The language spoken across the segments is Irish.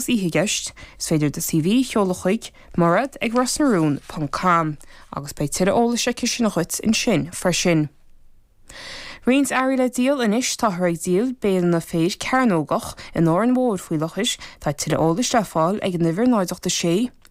Más oíche i gceist, is féidir do CV a sheoladh chuig, Mairead ag Ros na Rún ponc com, agus beidh tuilleadh eolais aici sin dhuit ansin freisin. Roinnt earraí le díol anois Táthar ag díol béileanna féir cearnógach in Árainn Mhór faoi láthair. Tá tuilleadh eolais le fáil ag an uimhir 086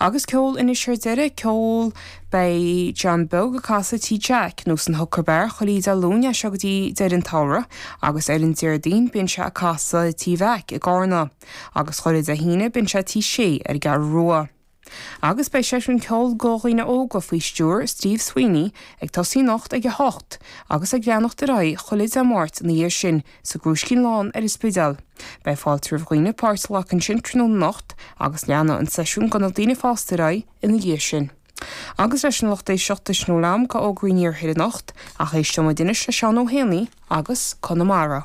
Agus ceol anois ar deireadh, ceol. Beidh John Beag ag casadh Tí Jeaic, nó san Hooker Bar, chuile Dé Luain as seo go dtí deireadh an tsamhraidh, agus ar an Déardaoin bíonn sé ag casadh Tí Mheaic i gCarna, agus chuile Dé hAoine bíonn sé Tí Sé ar an gCeathrú Rua. Agus beidh seisiún ceoil do dhaoine óga faoi stiúir Steve Sweeney ag tosaí anocht ag a hocht, agus ag leanacht ar aghaidh chuile Dé Máirt ina dhiaidh sin sa gCrúiscín Lán ar an Spidéal. Beidh fáilte roimh dhaoine páirt a ghlacadh ansin tráthnóna anocht agus leanfaidh an seisiún do na daoine fásta ar aghaidh ina dhiaidh sin. Agus leis sin a lucht éisteachta, sin a bhfuil agam de fhógraí an Iarthair anocht ach éisteoimid anois le Seán Ó hÉanaigh agus Conamara.